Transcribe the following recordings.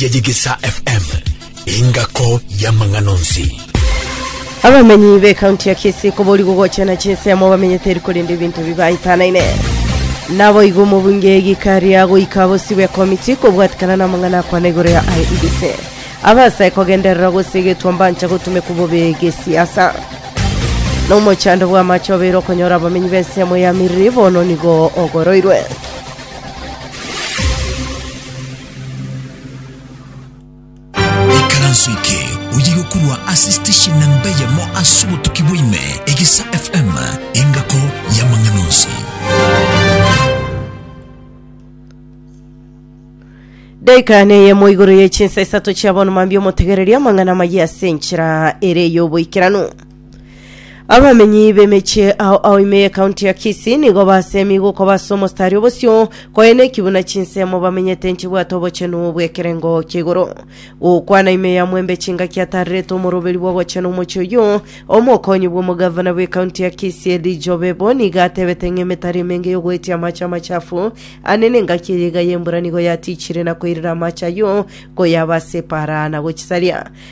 ya Yegesa FM, engako y'amang'ana onsi. Abamenyi b'ekaunti ya Kisii koborigwa gochena chinsemo bamenyete eri korenda ebinto bibaitanaine. Naboigo omobunge Gikari agoika abosi bw'ekomiti kobwatikana n'amang'ana akwana igoro ya IEBC. Abase kogenderera gose egetwa mbancha gotumekwa bobe gesiasa. Nomochando bw'amache obeire okonyora abamenyi b'ensemo ya Miriri bono nigo ogoroirwe. ikaranso eke oye gokurwa ase station na mbeyemo ase obotuki bwaime egesa fm engako y'amang'ana onsi Daika neyemo igoro ye chinsa isato chia bono mambia omotegereria amang'ana maye ase enchera ere y'oboikeranu. Abamenyi b'emechie ao ao ime y'ekaunti ya Kisii nigo basemi gokoba ase omostari obosio koyene eki buna chinsemo bamenyete nchibwate obochenu bw'ekerengo kia igoro. Gokwana ime ya Mwembe chingaki atarerete omoroberi bw'ogochena omochie oyio, omokonyi bw'omogavana bw'ekaunti ya Kisii Elijah Obebo nigo atebete ng'a emetari emenge y'ogoetia amache amachafu ane n'engaki eye iga y'embura nigo yatichire na koirera amache ayio koyaba ase epaara na gochisaria.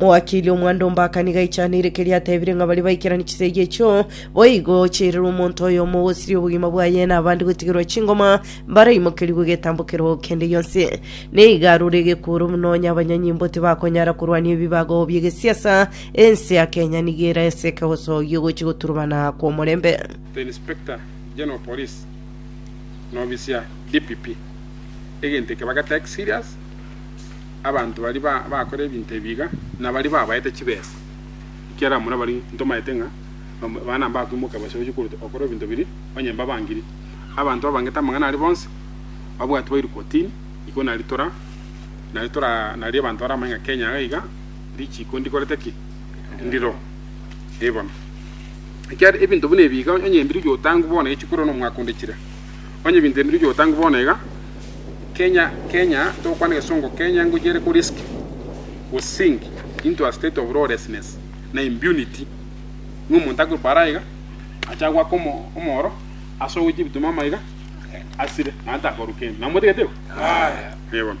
Mowakili omwando mbaka nigo aichanire keria atebire ng'a baria baikeranie chisegi echio boigo chiairerwe omonto oyomo ogosiria obogima bwaye na abande gotigerwa chingoma mbaraimokerigwe getambokero kende gionsi. Nigo arure egekuuro buna onye abanyanyimbo tibakonyara korwania ebibago bi'egesiasa, ense ya Kenya nigo eraeseke obosogi ogochia goturubana kw'omorembe. The Inspector General Police na obisia, DPP, egento eke bageta ex serious. abanto baria ba- bakora ebinto ebi iga, na baria babaete chibesa, ekiagera muna baria ntomaete ng'a bam- bana mbakwimoka bose gochia korwa okora ebinto biria, onye mbabangiri. Abanto babangete amang'ana aria bonsi, babwatwe bairwe kotini, iko nari tora nari tora nari abanto baramanye ng'a Kenya iga iga richiiko ndikorete ki? Ndiro. Eeh bono. Ekiagera ebinto buna ebi iga onye mbirorio otangwe bono echi korwa na omwaka onde chire. Onye ebinto ebi nibirikire gotangwa bono iga, Kenya, Kenya, togokwana egesongo Kenya ngochia ere ko risk we sink into a state of lawlessness na impunity ng'a omonto akorwa paara iga acha gwaka omoro ase ogoitia ebitumama iga asire naende takoruka ime. Namotigete igo? Aye. Ee bono.